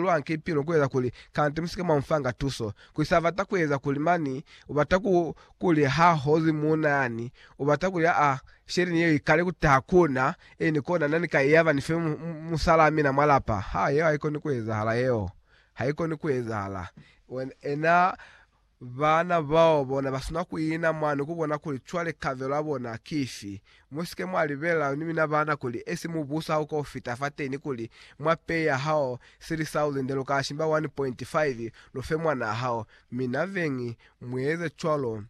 lwani ki pilo kueza kuli kanti musike mwa mufanga tuso kuli sa bata kueza kuli mani ubata ku kuli ha hozi muuna yani ubata kuli a sheleni yeo ikale ku taha kuna eni kona nani ka yaba ni fe musalaa mina mwa lapa ha yeo haikoni kuezahala yeo haikoni kuezahala ena Baana bao bona basina kuina mwani kubona kuli cwale kabelo ya bona kifi. Musike mwa libelela ni mina baana kuli esi mubuso hauka kufita fateni kuli mwa pay ya hao sili sa ulinde luka shimba 1.5 lufe mwanaa hao. Mina beñi, mueze cwalo.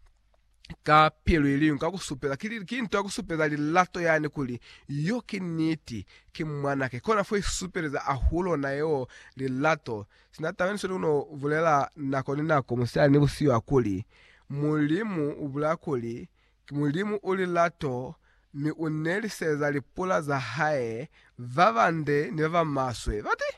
ka pilu iliñwi ka kusupela ki, ki nto ya kusupeza lilato yani kuli yo ki niti, ki mwanake. Kona fo isupeleza ahulo na yeo lilato. Sina taba yenisweli uno bulela nako ni nako, musihali ni busihu ya kuli, Mulimu ubulela kuli, Ki Mulimu u lilato, mi u neliseza lipula za hae, ba bande ni ba ba maswe. Bati?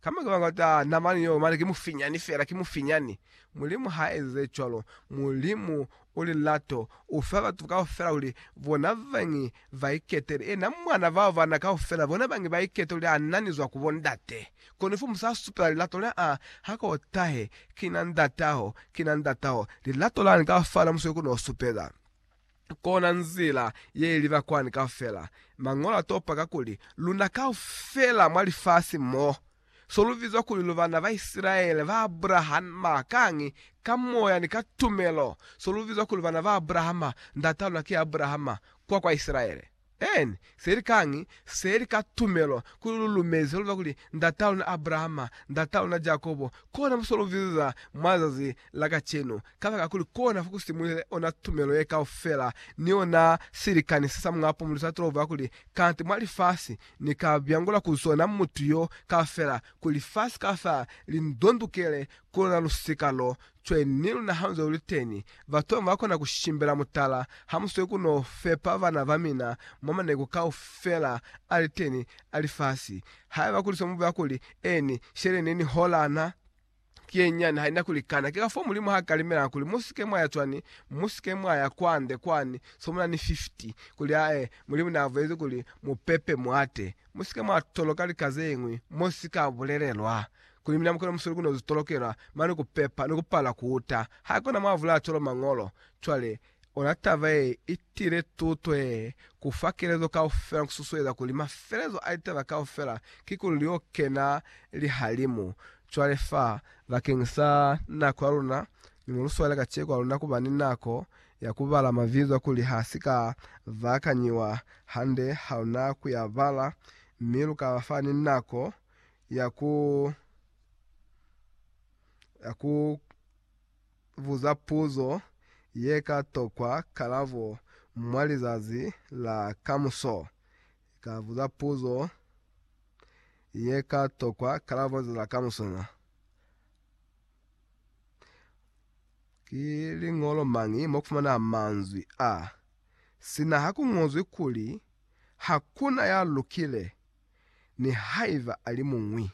Ka mañi ba bata namani yeo? Mane ki mufinyani fela, ki mufinyani. Mulimu ha ezize cwalo. Mulimu u lilato. U fa batu kaufela kuli bona bañi ba iketele. Ena Mwana bao bana kaufela, bona bañi ba ikete kuli a nani zwa ku bo Ndate. Kono ifomu sa supela lilato la A ha ko tahe, Ki na Ndataho, ki na Ndataho. Lilato lani ka fala musweli ku no supeza. kona nzila ye liba kwani kaufela. Mañolo a topa ka kuli, Luna kaufela mwa lifasi mo, so lu bizwa kuli lu bana ba Isilaele ba Abrahama, kañi, ka moya ni ka tumelo, so lu bizwa kuli bana ba Abrahama, ndat'a luna ki Abrahama, kwa kwa Isilaele. N seli kangi seli ka tumelo kuli lu lumezi lwa kuli ndata luna Abrahama, ndata luna Jakobo, kona muso lu viza mwa zazi la kacenu, kabaka kuli kona fo ku simulile ona tumelo ye kaufela, ni ona silikani se sa Muñ'a Pumu lu sa tolova kuli kanti mwa lifasi ni ka byangula ku zona mutu yo kaufela, kuli lifasi kaufela li ndondukele ku lona lusika lo. Cwani ni luna ha nzwe uli teni, batona ba kona ku shimbela mutala ha mu sweli ku no fepa bana ba mina mwa maneku kaufela a li teni a lifasi. Haiba kuli se mu bulela kuli, Eeni, sheleleni hola na ki ye nyani, ha i na ku likana. Ki kafoo Mulimu ha kalimelangi kuli, Mu si ke mwa ya cwani? Mu si ke mwa ya kwande kwani, so mu na ni 50. Kuli, Aa, ee, Mulimu ne a bulezi kuli, Mu pepe mwate. Mu si ke mwa toloka lika ze ñwi mo si ka bulelelwa. Kuli mina mukona musuli kuno zitolokela mane kupepa ni kupala kuuta haikona mwavula cwalo mañolo. Cwale, ona taba ye itile tuto ye kufa kelezo kaufela ni kususueza kuli mafelezo a litaba kaufela kikuli lio kena lihalimu. Cwale fa, bakeng sa nako ya luna, ni mo luswaile kaceko ha luna kuba ni nako ya kubala mabizo a kuli ha si ka baakanyiwa hande ha luna kuya bala, mi lu ka ba fa ni nako ya ku ya ku buza puzo ye ka tokwa kalabo mwa lizazi la kamuso. Ka buza puzo ye ka tokwa kalabo za la kamuso na. Ki liñolo mañi mo ku fumana manzwi a, sina ha ku ñozwi kuli, Hakuna ya lukile? nihaiba ali muñwi.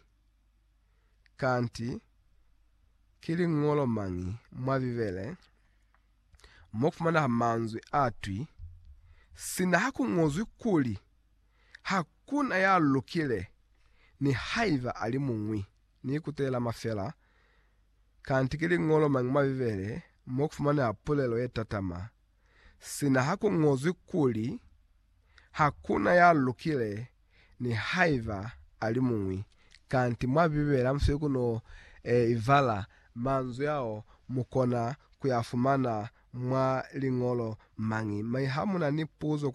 Kanti ki liñolo mañi mwa Bibele mo kufumanaha manzwi a twi, Sina ha ku ñozwi kuli, Hakuna ya lukile, nihaiba ali muñwi? Ni ikutelama fela, kanti ki liñolo mañi mwa Bibele mo kufumanaha pulelo ye tatama sina ha ku ñozwi kuli, Hakuna ya lukile, nihaiba a li muñwi. Kanti mwa Bibele hamusweli ku no e ibala manzwi ao, mu kona ku ya fumana mwa liñolo mañi mañi. Ha mu na ni puzo kwa